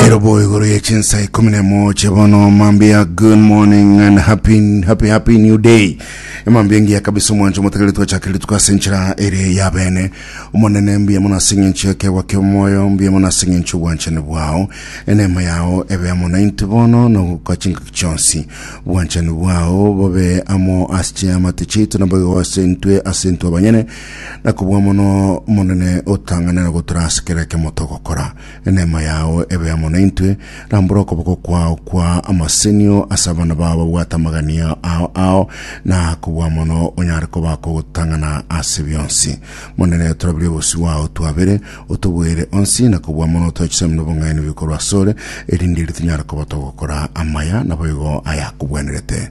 Erobo igoro ya chinsa ikumi na moja bono mambia good morning and happy happy happy new day mambia ngiya kabisa omwancho motegere twachakire tukase nchira ere ya bene omonene mbuya mono ase eng'encho yakegwa kia omoyo mbuya mono ase eng'encho obwanchani bwao enema yao ebe amo nainto bono na gokwa chingaki chionsi obwanchani bwao bobe amo ase chiamate chiaito na boigo ase intwe ase intwe abanyene na kobua mono omonene otang'ane na gotora ase kera ekemo togokora Eneema yao ebe amo naintwe, rambora okoboko kwao kwa amasenio ase abana bao babwate amagania ao ao, na kobua mono onyare koba kogotang'ana ase bionsi. Monene, torabirie obosio bwao twabere, otoboere onsi, na kobua mono toe chisaimino bong'aini bikorwa asore, erinde erio tonyare koba togokora amaya, naboigo ayakobwenerete.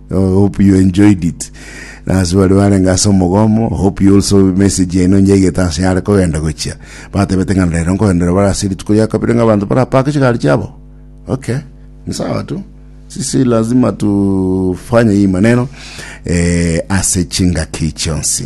I hope you enjoyed it. Na ase baria barenge ase omogomo, I hope you also message yaino nyaigete ase yare kogenda gochia. Batebete ng'a rero nkogenderera bare ase rituko ria kabere ng'a abanto barapake chigari chiabo. Okay. Ni sawa tu. Sisi lazima tufanye hii maneno eh, ase chingaki chionsi.